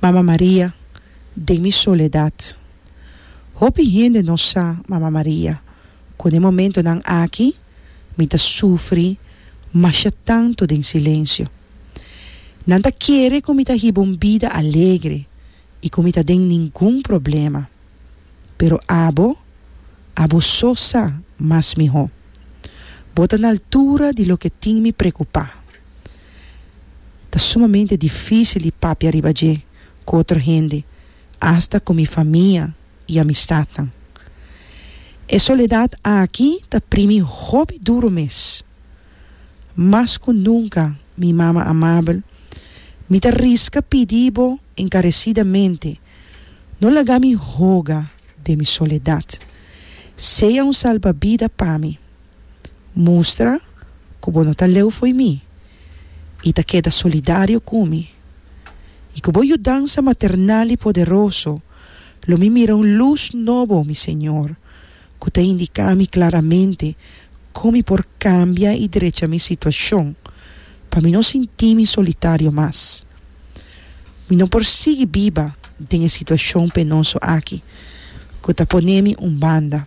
Mama Maria den mi soledad Hopi hende no sa Mama Maria cu n'e momentonan aki mi ta sufri masha tanto den silencio. Nan ta kere cu mi ta hiba un bida alegre y cu mi ta den ningun problema. Pero abo, abo so sa mas miho. Bo ta n'altura di loke tin mi preocupa. Ta sumamente difísil di papia riba dje ku otro hende, asta ku mi famia i amistatnan. E soledat aki ta primi hopi duru mes. Mas ku nunka, mi mama amabel, mi ta riska pidi bo enkaresidamente, no laga mi hoga den mi soledat. Sea un salbabida pa mi. Mustra ku bo no ta leu fo'i mi i ta keda solidario ku mi. I ku bo yudansa maternal i poderoso lo mi mira un lus nobo, mi Señor, ku ta indiká mi klaramente kon mi por kambia i drecha mi situashon pa mi no sinti mi solitario mas. Mi no por sigui biba den e situashon penoso aki ku ta ponemi un banda.